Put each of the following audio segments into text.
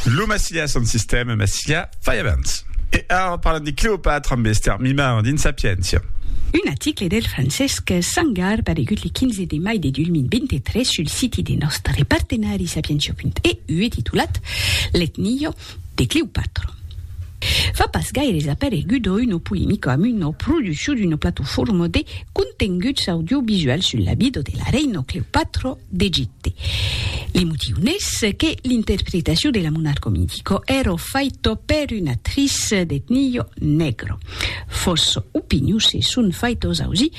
Lo Massilia son sistèma Massilia fai abans. E ara parlam de Cleopatra amb Ester Mimard dins Sapiéncia. Un aticle del Francesc Sangar paregut le 15 de mai de 2023 sul siti de nòstre partenari Sapientia.eu e titulat L'etnia, de Cleopatra. Fa pas gaires aparegut a Uno Polemico amb una produccion d'una platofòrma de contenguts audiovisuals sus la vida de la reina Cleopatra d'Egipte. Li motiu n'es que l'interpretacion de la monarca mitica èra faita per una actrice d'etnia negra. Fòrça opinions se son faitas ausir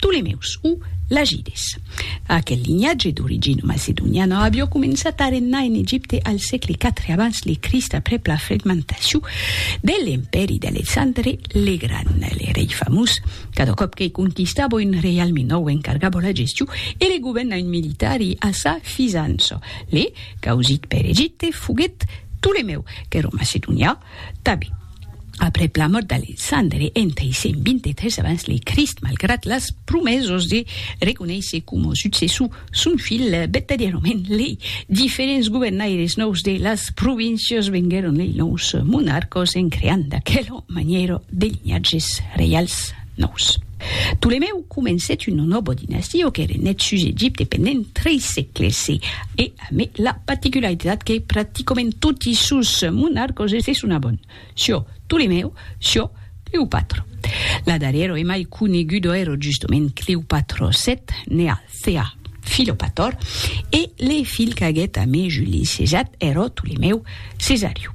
Tolemeus o Lagides. Aquel linhatge d'origina macedoniana avió començat a regnar en Egipte al sègle iv abans de Crist aprèp la fragmentacion de l'empèri d'Alexandre le Gran, le rei famós. Cada còp que conquistava un reialme nòu encargava la gestion e le governament militari a sa fisança. Le causit per Egipte foguèt Tolemèu, qu'èra macedonià, Tabi. Aprèp la mòrt d'Alexandre en 323 abans le Crist, malgrat las promesas de reconéisser coma successor son filh, vertadièrament lei diferents governaires nòus de las províncias venguèron lei nòus monarcas en creant d'aquela manièra de linhatges reials nòus. Ptolemèu comencèt una nòva dinastia que renèt sus Egipte pendent tres sègles e, Amé la paticularitat que practicament toti sos monarcos es de son abon, Sio, Ptolemèu, Sio, Cleopatro. La darrèro e mai conegudo ero justement Cleopatro vii, nea Thea, Philopator, e le filh qu'aguèt amé Juli Cesat ero Ptolemèu Cesariu.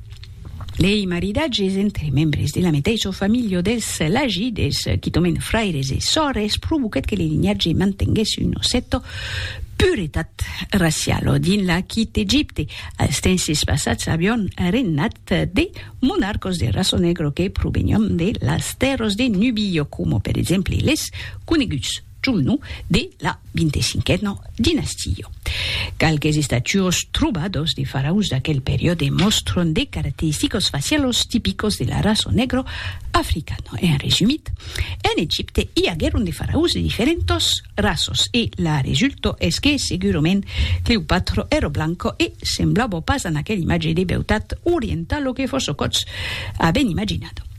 Lei maridatges entre membres de la meteissa familha dels Lagides, quitament fraires e sòrres, provoquèt que le linhatge mantenguèsse una cèta puretat raciala dins l'Aquit Egipte. Als tenses passats avián regnat de monarcas de raça negra que provenián de las tèrras de Nubia, coma per exemple les coneguts. Chumnu de la vintecinquena dinastia. Qualques estatuos trobados de faraus d'aquel periòde mòstron de caracteristicos facialos tipicos de la raça negro africana. En resumit, en Egipte i aguèron de faraus de diferentas raças e la resulta es que segurament Cleopatra èra blanca e semblava pas a aquela imatge de beutat orientala que Fosocòtz aven imaginada.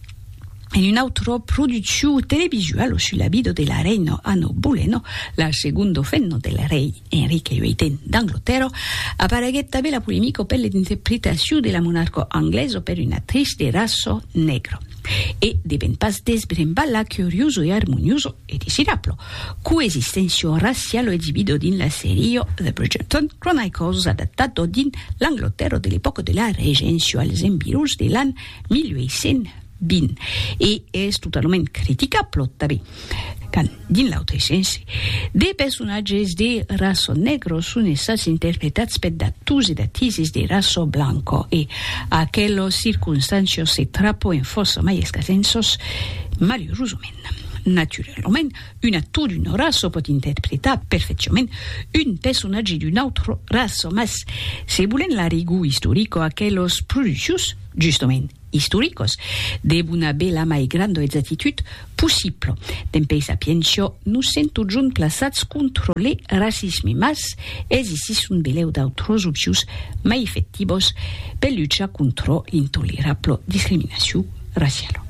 en un autro produciu televisual su la vida de la reina Anno Boleno, la segondo femna del rei Enrique VIII d'Anglotèrra, apareguèt tanben la polemica per l'interpretaciu de la monarca anglesa per una actrice de raça negra. E devèn pas desbrembar la curiosa e armoniosa, e desirabla, coexisténcia raciala exibida dins la seria The Bridgerton Chronicles adaptada dins l'Anglotèrra de l'epòca de la Regéncia als environs de l'an 1820 e es totalament criticable tanben quand, dins l'autre sens, de personatges de raço negro son estats interpretats per d'ators e d'atises de raço blanco e aquelos circonstancios se trapoen fòrça mai escasens sos, malurosament. Naturalament, Un actor d'una raça pòt interpretar perfecciament un personatge d'una autra raça, mas se volèm la rigor istorica, aquelas produccions, justament, istoricas, devon aver la mai granda exactitud possibla. Dempèi sapiéncia, nos sent totjorn plaçats contra le racisme, mas existisson belèu d'autras opcions mai efectivas per luchar contra l'intolerabla discriminacion raciala.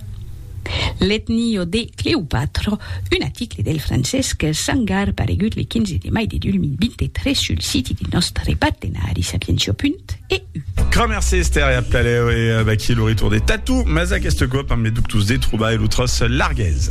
L'etnio de Cleopatra, un aticle del Francesc Sangar paregut le 15 de mai de 2023 sul siti de nòstre partenari sapientia.eu. Cramèrs Ester e Abcalèu e vaquí lo retorn de Tatou, mas aqueste còp amb le ductus de trobar e lo tros largués.